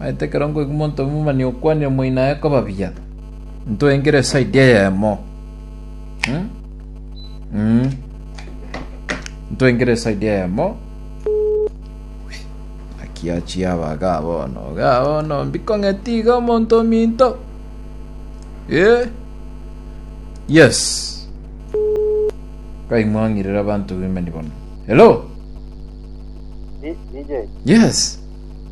Naende ekero nkoigwa omonto omomani okwanire omoina aye koba buya, ntoengere esaidi eyemo. Hmm? Mm. Ntoengere esaidi eyemo. Akiachi aba ga bono, ga bono mbikong'eti iga omonto ominto. Eh? Yes. Kaimwang'irera abanto bemani bono. Hello? Di- DJ, Yes.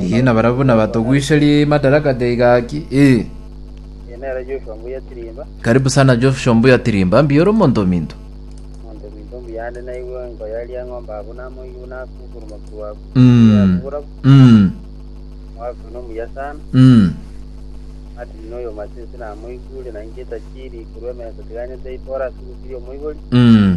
Ee, na barabwo buna batogwicherie madaraka taiga aki. Ee. Karibu sana Joshua Mbuya Tirimba, mbuya ore omonto ominto. Mm. Mm. Mm. Mm.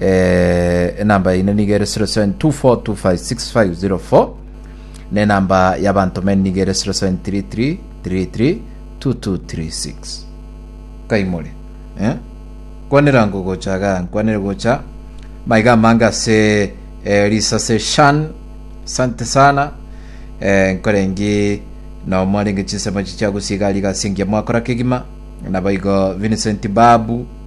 eh, enamba yaino nigo ere 0724256504 na enamba y'abantomeni nigo ere 0733332236 kaimore eh? kwanera ngo gocha ga nkwanere gocha maiga amange ase eh, risase shan sante sana eh, nkorengi na omwarenge chinsemo chichiagusiga riga singia mwakora kegima nabaigo Vincent Babu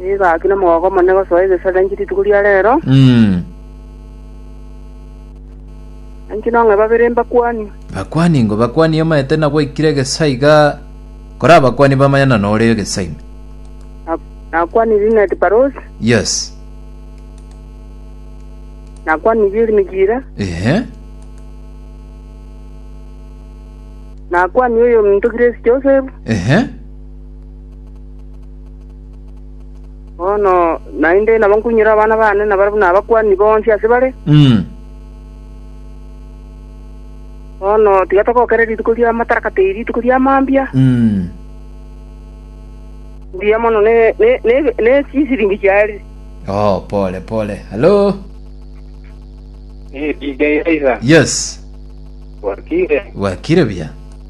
Nigo agakina omogooko omonene gosoa egesare nainche rituko ria reero, Mm. nainche nong'e babere mbakwani. Bakwani ingo bakwani omanyete na gwaikire egesaa iga kora abakwani bamanyana nore egesaa ime. Na- Nakwani Linet Parosi, Yes. nakwani Bill Migira, Ehe. nakwani oyo ominto Grace Joseph, Ehe. Bono naende nabo nkunyire abana bane nabare buna abakuani bonsi ase bare. Mm. Bono tiga togokere rituko ri'amatarakata eri rituko ria mambia, Mm. mbuya mono ne ne ne ne chisiringi chiare. Oh, pole pole. Hello. Eh, DJ Aiza, Yes. wakire. Wakire buya.